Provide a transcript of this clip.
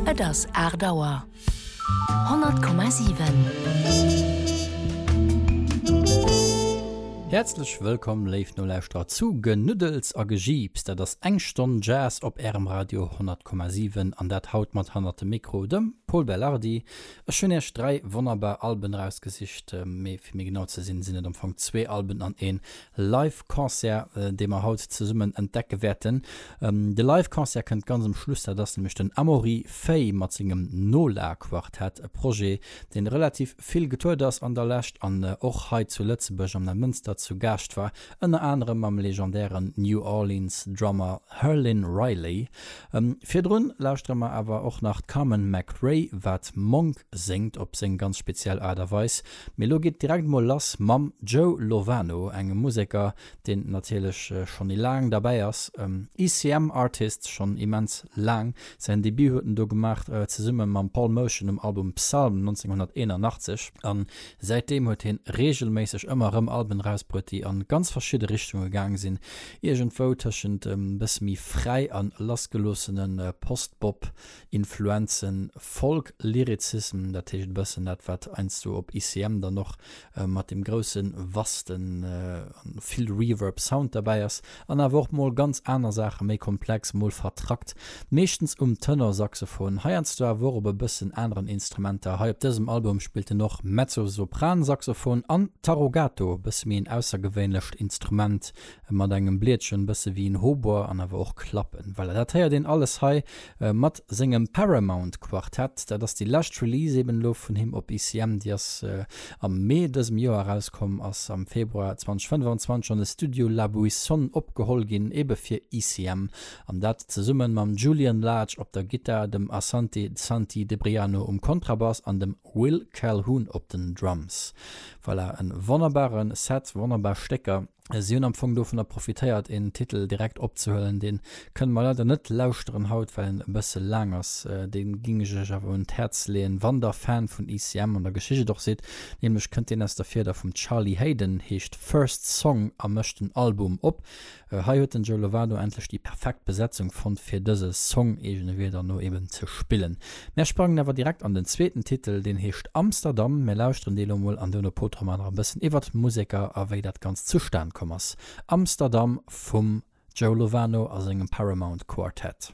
Et ass 8 Auer. 100,7. Häerzlech wëllkomm, léif Nolauschterer, zu Genuddels a Gejiips. Dat ass eng Stonn Jazz op Ärem Radio 100,7. An dat haut mat hannert dem Mikro dem Pol Belardi. Ech hunn Iech dräi wonnerbar Alben erausgesicht. Mee fir méi genau ze sinn, sinn et am Fong zwee Alben an een Live Concert, dee mer haut zesummen entdecke wäerten. De Live Concert kënnt ganz um Schluss, dat ass nämlech den Amaury Fay mat sengem Nola Quartett, e Projet deen relativ vill getourt ass an der Lescht an och hei zu Lëtzebuerg am Neimënster zu Gaascht war, ënner anerem mam legendären New Orleans Drummer Herlin Riley. Virdrun lauschtere mer awer och nach d'Carmen McRae, wat Monk séngt op seng ganz speziell Aart a Weis. Mee lo geet direkt mol lass mam Joe Lovano, engem Museker deen natierlech schonn e laang derbäi ass. ECM Artist, schonn immens laang. Säin Debut huet en do gemaach zesumme mam Paul Motian um Album Psalm 1981 a säitdeem huet hien reegelméisseg ëmmer erëm Alben erausbruet déi an ganz verschidde Richtunge gaange sinn, iergendwou tëschent e bësse méi fräi an lassgeloossene Post-Bop Influenzen, Folk Lyricism, dat heescht e bëssen dat wat heiansdo op ICM dann och mat dem grousse Vasten an vill Reverb Sound derbäi ass, an awer och mol ganz aner Saachen, méi komplex, mol vertrackt, meeschtens um Tenor Saxophon, heiansdo awer och op e bëssen aneren Instrumenter. Hei op dësem Album spillt en och Mezzo Sopran Saxophon an Tarogato, e bësse méi en aussergewéinlecht Instrument e mat engem Bliedchen bësse wéi en Hautbois an awer och klappen. Voilà, dat héiert een alles hei mat sengem Paramount Quartett. Dat ass déi lescht Release eben elo vun him op ICM, déi ass am Mee dësem Joer erauskomm, ass am Februar 2025 an de Studio La Buissonne opgeholl ginn, ebe fir ICM, an dat zesumme mam Julian Lage op der Gittar, dem Asante Santi Debriano um Kontrabass an dem Will Calhoun op den Drums. Voilà, e wonnerbare Set, wonnerbar Stécker. Si hunn am Fong dovunner profitéiert een Titel direkt opzehuelen. Dee kënne mer leider net lauschteren haut, well en e bësse laang ass. Dee géing ech iech awer un d'Häerz leeën, wann der Fan vun ECM an der Geschicht och sidd. Nämlech kënnt deen aus der Fieder vum Charlie Haden, heescht First Song a mécht den Album op. Hei huet den Joe Lovado endlech déi perfekt Besetzung fonnt, fir dëse Song, eegene Wierder no, eben ze spillen. Mär sprangen awer direkt an den zweeten Titel, deen heescht Amsterdam. Mär lauschteren dee lo mol an duerno potere mer nach e bëssen iwwert d'Museker a wéi dat Ganzt zustan komm ass. Amsterdam vum Joe Lovano a sengem Paramount Quartet.